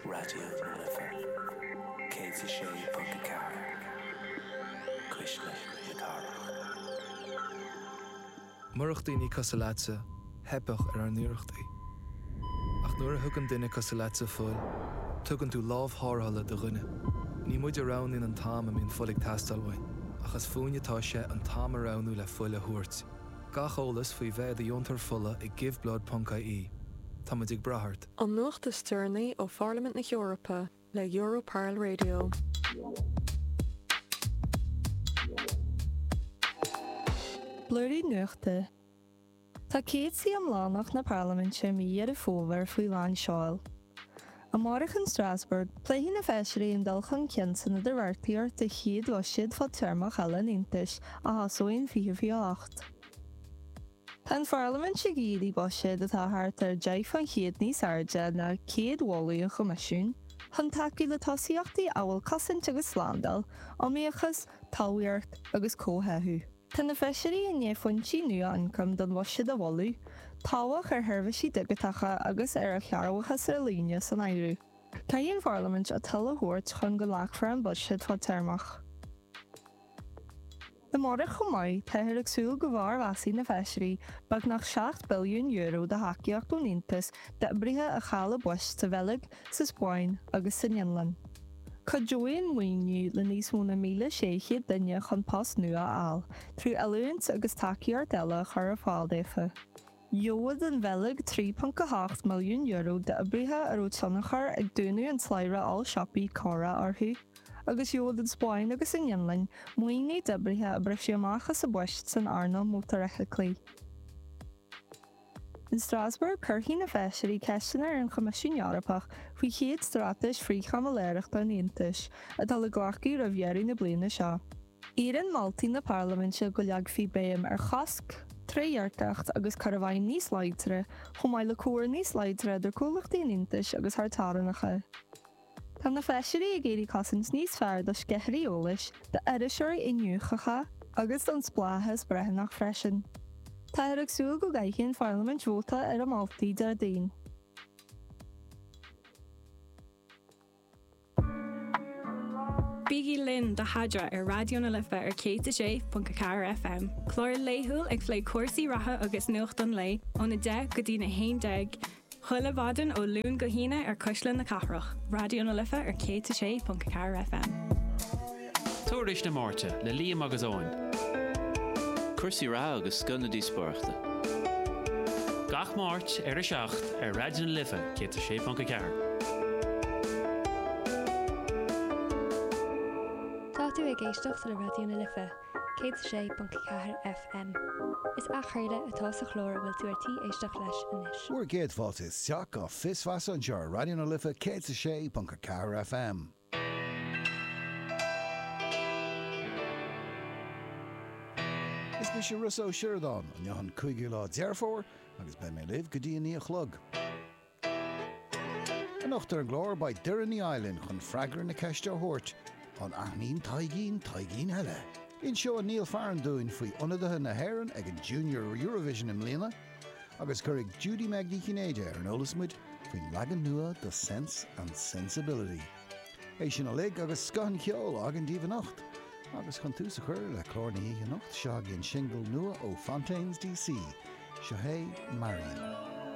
Raidió na Life 106.4 Cuisle na Cathrach. Murach daoine cosúil leatsa, theipeadh ar ár n-iarrachtaí. Ach nuair a thugann duine cosúil leatsa fuil, tugann tú lámh tharrthála do dhuine. Ní muid a roghnaíonn an t-am a mbíonn fuil ag teastáil uainn, ach is fúinn atá sé an t-am a roghnú le fuil a thabhairt. Gach eolas faoi bheith i do dheontóir fola ag giveblood.ie. Táimid ag brath ort. An nuacht is deireanaí ó Pharlaimint na hEorpa le Europarl Radio. Blúirín nuachta, Tá céad suí iomlánach na Parlaiminte mí Dheireadh Fómhair faoi lán seoil. Amárach in Strasbourg, pléifidh na feisirí an dul chun cinn san idirbheartaíocht don chéad bhuiséad fadtéarmach eile an Aontais, a thosóidh in 2028. Tá an Pharlaimint ag iarraidh buiséad atá thart ar 10 faoin chéad níos airde ná céad mholadh an Choimisiúin chun tacú le tosaíochtaí amhail cosaint agus slándáil, iomaíochas, talmhaíocht agus comhtháthú. Tá na Feisirí i ndiaidh foinsí nua ioncaim don bhuiséad a mholadh, tobhach ar sheirbhísí digiteacha agus ar chearrbhachas ar líne san áireamh. Caithfidh an Pharlaimint a toil a thabhairt chun go nglacfar an buiséad fadtéarmach. Amárach chomh maith, táthar ag súil go bhformheasfaidh na Feisirí beagnach €7 billiún de thacaíocht ón Aontas d'oibrithe a chaill a bpoist sa Bheilg, sa Spáinn agus san Fhionlainn. Cuideoidh an maoiniú le níos mó na 1,600 duine chun post nua a fháil, trí oiliúint agus tacaíocht eile a chur ar fáil daofa. Gheobhaidh an Bheilg €3.8 milliún d'oibrithe a raibh tionchar ag dúnadh an tslabhra oll-siopaí Cora orthu, agus gheobhaidh an Spáinn agus an Fhionlainn maoiniú d'oibrithe a briseadh amach as a bpoist san earnáil mótarfheithiclí. In Strasbourg, cuirfidh na feisirí ceisteanna ar an Choimisiún Eorpach faoi chéad straitéis frith-chaimiléireachta an Aontais, atá le glacadh roimh dheireadh na bliana seo. Iarrann moltaí na Parlaiminte go leagfaí béim ar chosc, trédhearcacht agus cur i bhfeidhm níos láidre, chomh maith le comhar níos láidre idir comhlachtaí an Aontais agus thar teorannacha. Tá na feisirí ag iarraidh cosaint níos fearr do sceithirí eolais, d'iriseoirí iniúchacha agus don spleáchas breithiúnach freisin. Táthar ag súil go gcaithfidh an pharlaimint vóta ar a moltaí Déardaoin. Bígí linn do Eadra ar Raidió na Life ar 106.4 FM, clár laethúil ag plé cúrsaí reatha agus nuacht an lae, óna 10 go dtí'n 11, Chuile mhaidin ó Luan go hAoine ar Cuisle na Cathrach, Raidió na Life ar 106.4 FM. Tuairisc na Máirte le Liam agus Eoin. Cúrsaí reatha agus scoth na díospóireachta. Gach Máirt ar a 7 ar Raidió na Life 106.4. Tá tú ag éisteacht le Raidió na Life. 106.4 FM. Is athchraoladh atá sa chlár a bhfuil tú ar tí éisteacht leis anois. Bhur gcéad fáilte isteach go Fios Feasa anseo ar Raidió na Life 106.4 FM. Is mise Rossa Ó Sioradáin, inniu an cúigiú lá Deireadh Fómhair agus beidh mé libh go dtí a naoi a chlog. Anocht ar an gclár beidh Doireann ar ais linn chun freagra na ceiste a thabhairt, An aithníonn Taidhgín Taidhgín eile? Inseoidh Niall Farren dúinn faoi ionadaithe na hÉireann ag an Junior Eurovision i mbliana agus cuirfidh Judy-Meg Ní Chinnéide ar an eolas muid faoin leagan nua de Sense and Sensibility. É sin uilig agus scoth an cheoil againn daoibh anocht. Agus chun tús a chur le clár na hoíche anocht, seo chugainn singil nua ó Fontaines D.C. Seo hé Marian.